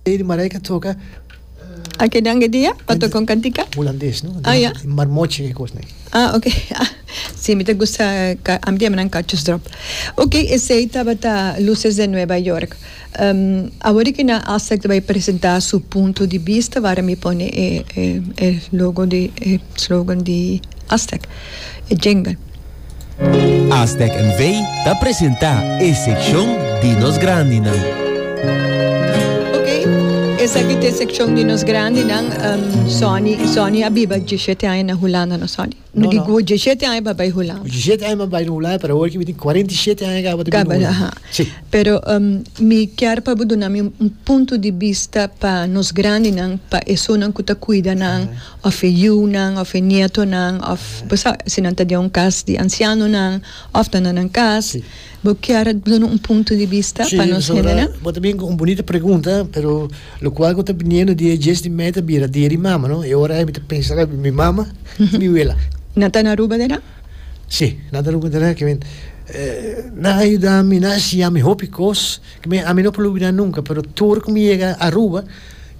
Lady Marijke a toca A que dan e dia pa toca un cantica? hulandes, no? Ah, ya. Di marmochi e cos, nee. Ah, ok. Ah, sí, mi ta gusta ca-, ami ta yama nan cachos drop. Ok, esey tabata Luces de Nueva York. Um, awor cu nan alsa ta bay presenta su punto di bista, wara mi pone e, e, e logo di, e slogan di Aztec, e jingle. Aztec NV. ta presenta e seccion di nos grandinan. Ok, esaki ta e seccion di nos grandinan. Um, Sonny, Sonny a biba 17 aña na Hulanda, no Sonny? No, di no. 17 aña pa bay Hulanda. 17 aña pa bay na Hulanda, pero hoor ki bitin 47 aña gaba ta biba Hulanda. Sí. Pero um, mi kier pa bo duna mi un punto di vista pa nos grandinan, pa esonan ku ta kuida nan. Uh -huh. òf e yunan òf e nietonan òf bo sa si nan ta den un kas di ansianonan òf ta na nan kas bo kier duna un punto di bista pa nos hendenan? Bo ta bini ku un bunita pregunta pero lokual ku ta biniendo di e djes di mei ta bira dia di mama no e ora ei mi ta pensa lak mi mama i mi wela. Nan ta na Aruba dera? Si nan ta Aruba dera kimen nan a yuda mi nan a enseña mi hopi kos kimen ami no por lubidá nunka pero tur ku mi yega Aruba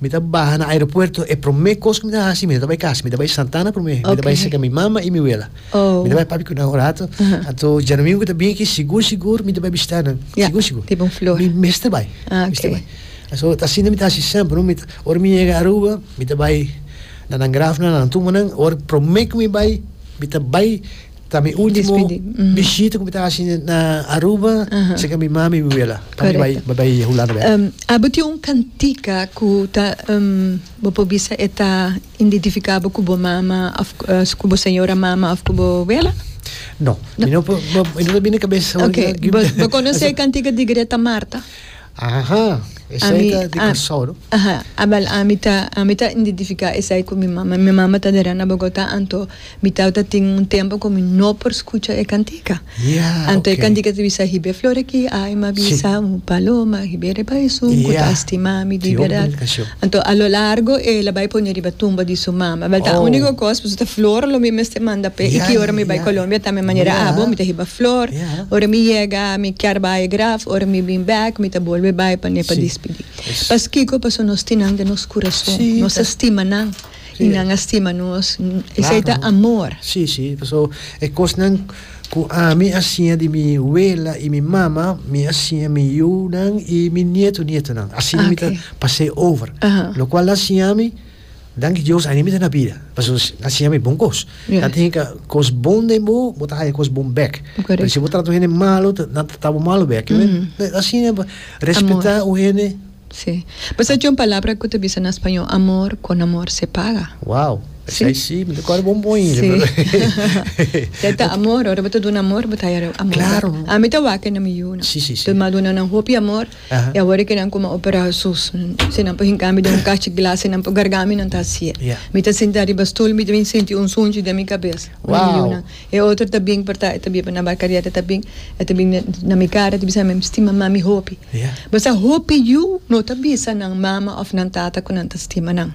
Mi ta baha na aeropuerto e prome cos cu mi ta haci mi ta bay casa mi ta bay Santana prome mi ta bay seca mi mama y mi wela mi ta bay papi cu nan un rato anto djadomingo cu ta bini aki sigur sigur mi ta bay bishita nan sigur sigur mi mester bay mi mester bay so ta asina mi ta haci semper no ora mi yega Aruba mi ta bay na nan graf nan na nan tumba nan ora prome cu mi bay mi ta bay Ta mi ultimo bishita ku mi ta hasi na Aruba, si ka mi mami i mi wela. Pasobra mi bai bai Hulanda bek. Abo tin un kantika ku ta bo por bisa e ta indentifiká bo ku bo mama òf ku bo señora mama òf ku bo wela? No. Mi no por, mi no ta bini na kabes. Bo konosé e kantika di Greta Marta? Ahaha, esei ta di Kòrsou no? Aha, Abel ami ta ami ta identifiká esei ku mi mama. Mi mama ta dera na Bogotá, anto mi tata ta tin un tempu ku mi no por skucha e kantika. Ya, ok. Anto e kantika ta bisa hib'é flor aki, aima bisa un paloma, hib'é riba esun ku ta estimá mi di bèrdat. Anto a lo largo el a bai pone riba tumba di su mama. Bel ta unico cos paso ta flor lo mi mester manda p'e. Y ki ora mi bai Colombia ta mi manera abo, mi ta hiba flor. Ora mi yega mi kier bai graf, ora mi bin bek mi ta bolbe bai pa ne pa dispidi. Paskico? Paso nos tin nan den nos curason, nos a stima nan. y nan a stima nos, esey ta amor. Sí, sí, paso e cosnan cu ami a siña di mi wela y mi mama, mi a siña mi yunan y mi nieto nietonan. Asina mi ta pas'e over. Locual nan siña ami, danki Dios, ain mi ta na bida. Paso nan siña mi bon cos. Nan tin haya cos bon den bo, bo ta haya cos bon bek. Pero si bo trata un hende malo, nan ta trata bo malo bek. Asina respeta un hende. Sí. Pues ey dje un palabra cu ta bisa na spañó, amor con amor se paga. Wow! Esey sí, mi ta kòrda bo un bon hincha, pero. Sí. Esey ta amor, ora bo ta duna amor, bo ta haya amor. Claro. Ami ta wak e na mi yu nan. Sí, sí, sí. Tur mi a duna nan hopi amor, Aha. i awor e kinan kuma opera Hesus. Si nan por hinka mi den un kachi glas, si nan por garga mi, nan ta hasié. Yeah. Mi ta sinta riba stol, mi ta bin sinti un sunchi den mi kabes. Wow! Na mi yu nan. E otro ta bin porta e ta biba na bar Cariet e ta bin e ta bin na mi cara e ta bisa mi stima mami hopi basta hopi yu no ta bisa nan mama of nan tata cu nan ta stima nan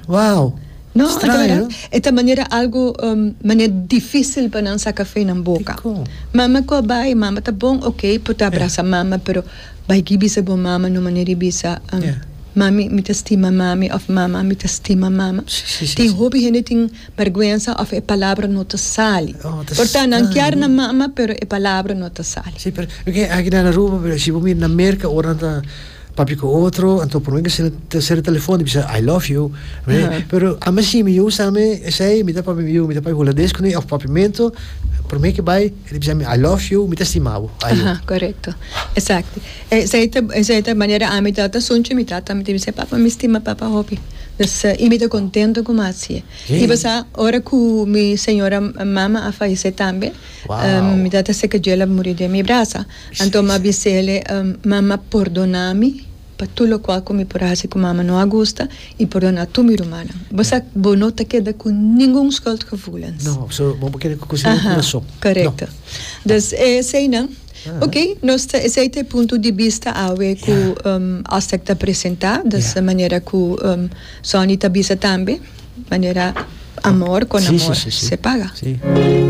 no e ta verdad e ta manera algo mane dificil pa nan saca fe nan boca mama cu a bay mama ta bon ok por ta abrasa mama pero bay ki bisa bo mama no manera y bisa mami mi ta stima mami of mama mi ta stima mama tin hopi hende tin. Bergwensa of e palabra no ta sali. Oh, ta Por ta, nan kier na mama pero e palabra no ta sali. Sí, pero mi ke aki na Aruba, pero si bo mira na Merka ora nan ta papia ku otro, nan ta promé bisa nan sera telefòn i bisa I love you, oe. Pero ami sí, mi yu sa mi esei, mi ta papia mi yu, mi ta papia hulades kuné of papiamentu, promé ke bai. E ta bisa mi, I love you, mi ta stima bo. Ajo. Aha, korekto. Exacto. Esei ta, esei ta manera ami ta ata sunchi mi tata, mi ta bisa, papa, mi stima papa hopi. Dus, i mi ta kontento ku mi a hasi'e. I pasá ora ku mi señora mama a falesé tambe, mi tata seka djel a muri den mi brasa. Anto mi a bis'e, mama, pordona mi. Pa tur locual cu mi por haci cu mama no a gusta y perdona tur mi rumannan. Bo sa bo no ta keda cu ningun schuldgevoelens. No, so bo no por keda cu cose den curason. Aha, correcto. Dus e eseinan, ok, nos ta esey ta e punto di bista awe cu Ostek ta presenta, dus manera cu Sonny ta bisa tambe. Manera amor con amor se paga.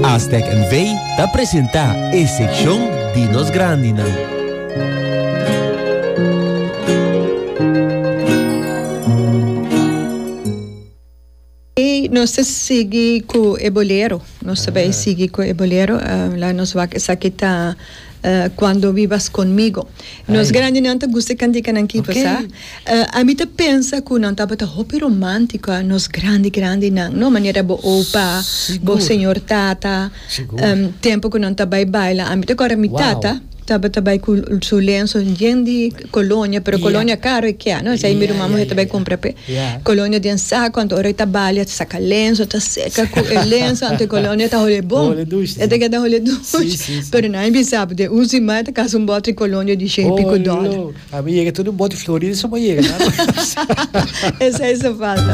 Aztec NV ta presenta e seccion di nos grandinan. Nos ta sigui cu e bolero, nos ta bay sigui cu e bolero, la nos wak esaki ta. Cuando vivas conmigo. Nos grandinan ta gusta e cantikanan ki por sa. Ami ta pensa cu nan tabata hopi romantico nos grandi grandinan no manera bo opa bo señor tata tempo cu nan ta bay baila ami ta acorda mi tata tabata bay cu su lenzo yen di colonia pero colonia caro e kia no esai mi ruman muhe ta bay compra pe colonia den saco anto ora e ta bali e ta saca lenzo e ta seca cu e lenzo anto e colonia ta hole bon e ta keda hole dushi pero nan a bisa bo den un siman e ta casa un bote di colonia di shei y pico dollar. Esai ta falta.